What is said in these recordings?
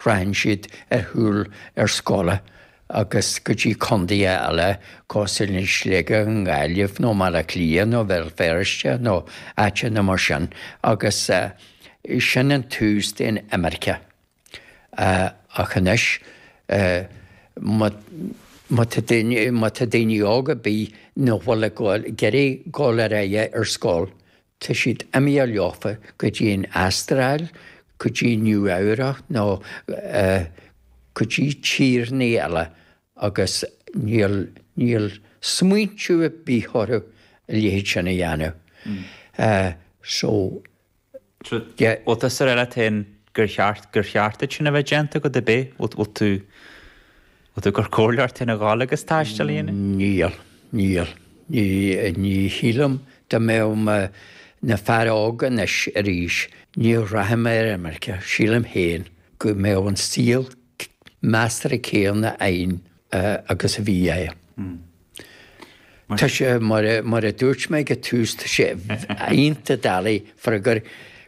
Rachann siad ar shiúl ar scoil agus go dtí contaetha eile cosúil le Sligeach, Gaillimh nó Baile Átha Cliath nó Béal Feirste nó áiteanna mar sin agus sin an tús den imirce. Ach anois má tá daoine, má tá daoine óga ar bith nach bhfuil ag dul, ag iarraidh dul ar aghaidh ar scoil, Tá siad imithe leofa go dtí an Astráil, go dtí Nua Eabhrach nó go dtí tíorthaí eile agus níl smaointiú ar bith orthu a leithéid sin a dhéanamh. So, yeah. Bhfuil tusa ar do gur cheart, gur cheart duit sin a bheith déanta agat ar bith? Bhfuil tú. Bhfuil tú gur comhairleoir Fhine Gall agus taisteal a dhéanamh? Níl. Níl. Ní shílim dá mbeadh mé ina fear óg anois arís, ní rachadh mé ar imirce. Sílim féin go mbeadh an saol measartha céanna a'inn agus a bhí agam. Tá sé, mar a dúirt mé ag an tús, tá sé iontach doiligh freagar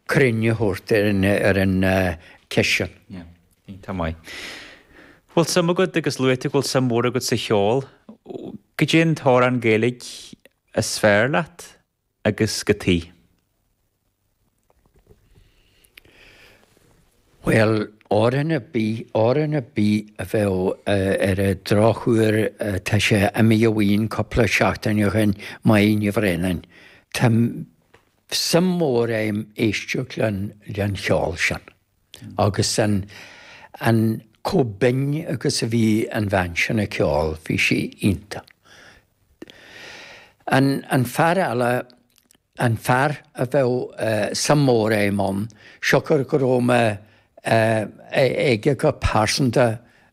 cruinn a thabhairt ar an ceist sin. Tá maith. Bhfuil suim agat agus luaigh tú go bhfuil suim mhór agat sa cheol. Caidé an t-amhrán Gaeilge is fearr leat agus cad chuige? Bhuel, amhrán ar bith, amhrán ar bith a bheadh, ar an drochuair, tá sí imithe uainn cupla seachtain ó shoin, Moya Ní Bhraonáin. Tá suim mhór a'm éisteacht leis an cheol sin. Agus an, an, chomh binn agus a bhí an bhean sin ag ceol, bhí sí iontach. An, an fear eile, an fear a bheadh suim mór a'm ann, siocair gur bhuail mé leis go pearsanta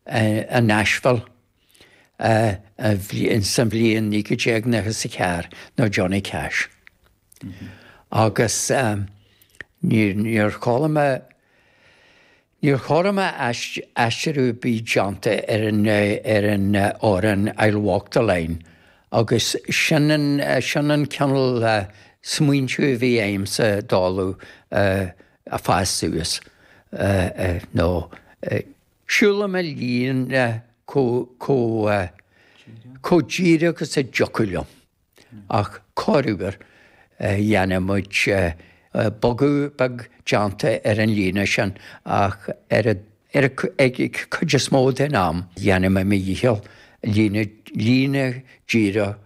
i Nashville. sa mbliain 1994 ná Johnny Cash agus níor chuala mé, níor chuala mé aistriú ar bith déanta ar an, ar an amhrán I Walk the Line agus sin an, sin an cineál smaointiú a bhí a'msa ag dul a, ag fás suas nó. Siúlaim an líne chomh díreach agus a dtiocfadh liom, ach corruair dhéanann muid bogadh beag déanta ar an líne sin, ach ar an gcuid is mó den am déanaim mo dhícheall líne díreach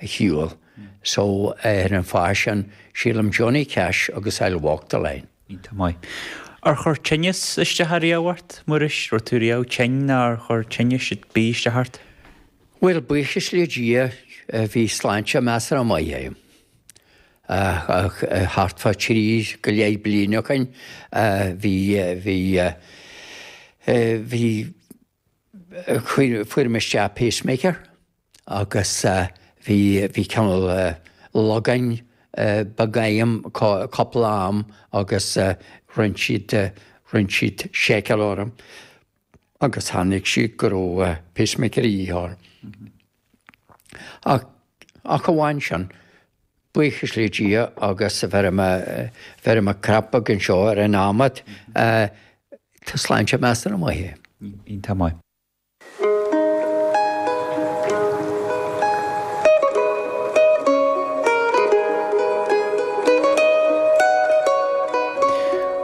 a shiúl. So, ar an fáth sin, sílim Johnny Cash agus I'll Walk the Line. Iontach maith. Ar chuir tinneas isteach ariamh ort, Muiris? Raibh tú riamh tinn nó ar chuir tinneas ar bith isteach ort? Bhuel, buíochas le Dia, bhí sláinte measartha maith agam. Thart fá thrí go leith bliain ó shin, bhí, bhí, bhí, Fuair mé isteach pacemaker agus bhí bhí cineál lagú beag agam cúpla am agus rinne siad rinne siad seiceáil orm agus chonaic siad go raibh pacemaker de dhíth orm. ach amháin sin, buíochas le Dia agus bheirim cnag beag anseo ar an adhmad, tá sláinte measartha maith agam. Iontach maith.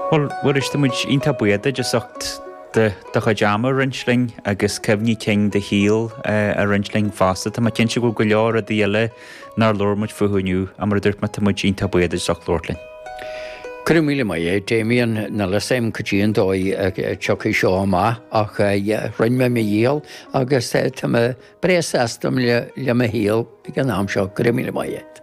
Bhuel, Mhuiris, tá muid iontach buíoch duit as ucht do chuid ama a roinnt linn agus cuimhní cinn do shaol a roinnt linn fosta. Tá mé cinnte go bhfuil go leor rudaí eile nár labhair muid fúthu inniu, ach mar a dúirt mé, tá muid iontach buíoch duit as ucht labhairt linn. Go raibh míle maith agat, Damien, níl a fhios agam caidé an dóigh a tiocfaidh seo amach ach rinn mé mo dhícheall agus tá mé breá sásta le mo shaol ag an am seo. Go raibh míle maith agat.